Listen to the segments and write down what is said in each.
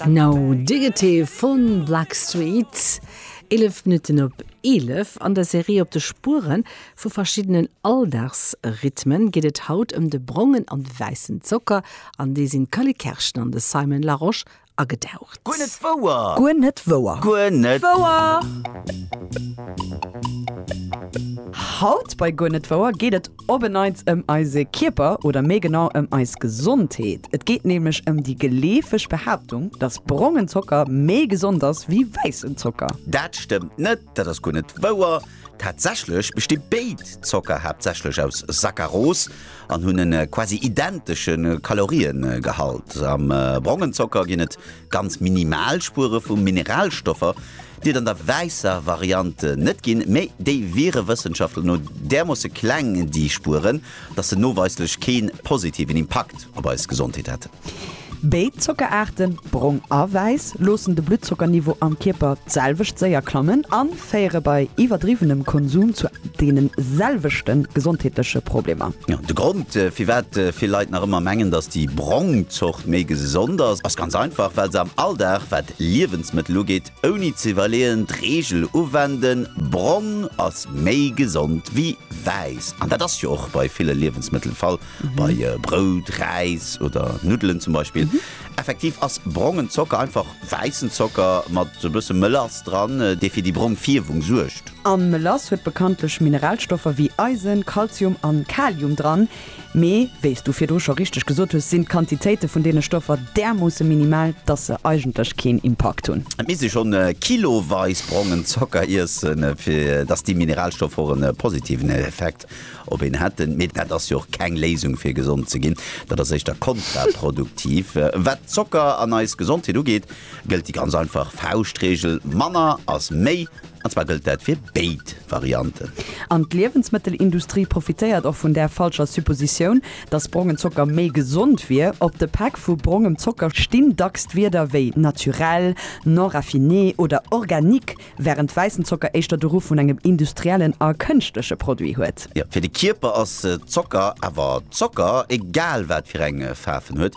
No Diggity vun Blackstreet, 11 Minutten op 11. An der Serie Op de Spuere vu verschiddenen Alldagsrhythmen geet et haut ëm de brongen an de wäissen Zocker, an déi sinn d'Cally Kerschen an de Simon Larosche agetaucht. Guer net wouer! Guer net wouer! Guer net wouer! Haut bei Guer net wouer geet et. Op e Neits ëm eise Kierper oder méi genau ëm eis Gesondheet. Et geet nämlech ëm déi geleefeg Behaaptung, dass brongen Zocker méi gesond ass wéi wäissen Zocker. Dat stëmmt net, dat ass guer net wouer. Tatsächlech besti béid Zocker haaptsächlech aus Sackaros an hunn e quasi identesche Kaloriegehalt. Am brongen Zocker ginn et Ganz minimal Spuere vu Mineralstoffer, déi et an der wäisser Variant net ginn, mee déi wiere Wëssenschaftler no därmoosse kleng, déi Spueren, datt se noweislech kee positiven Impakt op eis Gesondheet hätten. Béid Zockeraarten, brong a wäiss, loossen de Bluttzocker-Niveau am Kierper d'selwecht séier klammen an. féiere bei iwwerdriwwenem Konsum zu deene selwechte gesondheetleche Problemer. De Grond, firwat vill Leit nach ëmmer mengen, datt déi brong Zort méi gesond ass, ass ganz einfach, well se am Alldag, wat Liewensmëttel ugeet, ouni ze iwwerleeën d'Reegel uwenden, Brong ass méi gesond wéi wäiss. An dat ass jo och bei ville Liewensmëttel de Fall, bei Brout, Räis oder Nuddelen zum Beispill. Effektiv ass brongen Zocker einfach wäissen Zocker mat e bësse Melass dran, dee fir déi brong Fierwung suergt. A Melass huet bekanntlech Mineralstoffer wéi Eisen, Kalzium a Kalium dran. Mee wéis du virdru scho richteg gesot hues, sinn d'Quantitéite vun deene Stoffer därmoosse minimal, dass se eigentlech keen Impakt hunn. Et misst ee schonn kiloweis brongen Zocker iessen, fir dass déi Mineralstoffer och e positiven Effekt Op een hätten, mee dat ass jo och keng Léisung fir gesond ze ginn, dat ass éischter kontraproduktiv. Wat Zocker an eis Gesondheet ugeet, gëllt déi ganz einfach Fauschtreegel, manner ass méi, an zwar gëllt dat fir béid Varianten. An d'Liewensmëttelindustrie profitéiert och vun där falscher Suppositioun, datt brongen Zocker méi gesond wier. Op de Päck vu brongem Zocker stinn dacks d'Wierder wéi naturel, non raffiné oder organique. Wärend wäissen Zocker éischter de Ruff vun engem industriellen a kënschtleche Produit huet. Jo, fir de Kierper ass Zocker awer Zocker, egal wat fir eng Faarf en huet.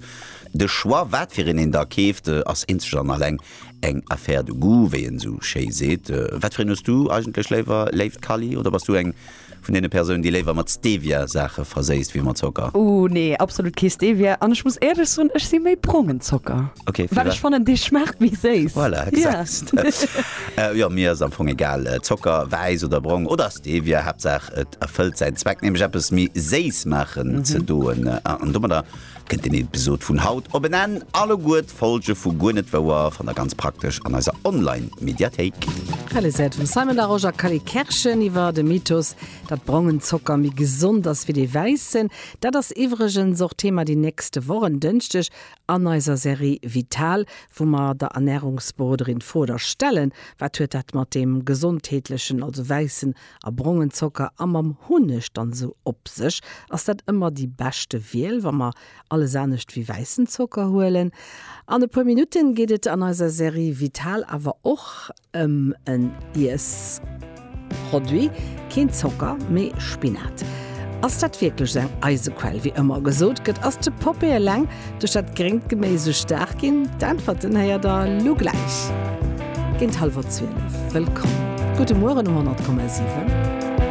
De Choix, wat fir een een da keeft, ass eenzeg an alleng eng Affaire de goût, wéi een esou schéi seet. Wat fir een hues du eigentlech léiwer, léift Kali, oder bass du eng. vun deene Persounen, déi léiwer mat Stevia Saache verséisst wéi mat Zocker. Ooh nee, absolut kee Stevia. An ech muss éierlech soen, ech si méi brongen Zocker, Okay, fir well ech wat? fannen, dee schmaacht méi séiss. Voilà, Ja. gesahs de. Jo, mir ass am Fong egal, Zocker, wäiss oder brong, oder Stevia, Haaptsaach et erfëllt säin Zweck, nämlech eppes méi séiss maachen ze doen. An domadder Kënnt den Episod vun haut op en Enn, alleguer d'Folge vu Guer net wouer fannt der ganz praktesch an eiser Online Mediathéik. Realiséiert vum Simon Larosche a Callie Kerschen iwwer de Mythos, datt brongen Zocker méi gesond ass wéi dee wäissen. Dat ass iwwregens och Thema déi nächste Woch en Dënschdeg an eiser Serie Vital, wou mer der Ernärungsberoderin d'Fro da stellen, Wat huet dat mat deem gesondheetlechen, also wäissen a brongen Zocker a mam Hunneg dann esou op sech, ass dat ëmmer déi beschte Wiel, wa mer alles anescht wéi wäissen Zocker huelen. An e puer Minutten geet et an eiser Serie Vital awer och ëm en Iessproduit, keen Zocker, mee Spinat. Ass dat wierklech esou eng Eisequell, wéi ëmmer gesot gëtt? Ass de Poppee eleng Duerch dat gréngt Geméis esou staark ginn? D'Äntwerten héiert der lo gläich géint hallwer 12. Wëllkomm! Gudde Mueren um 100,7.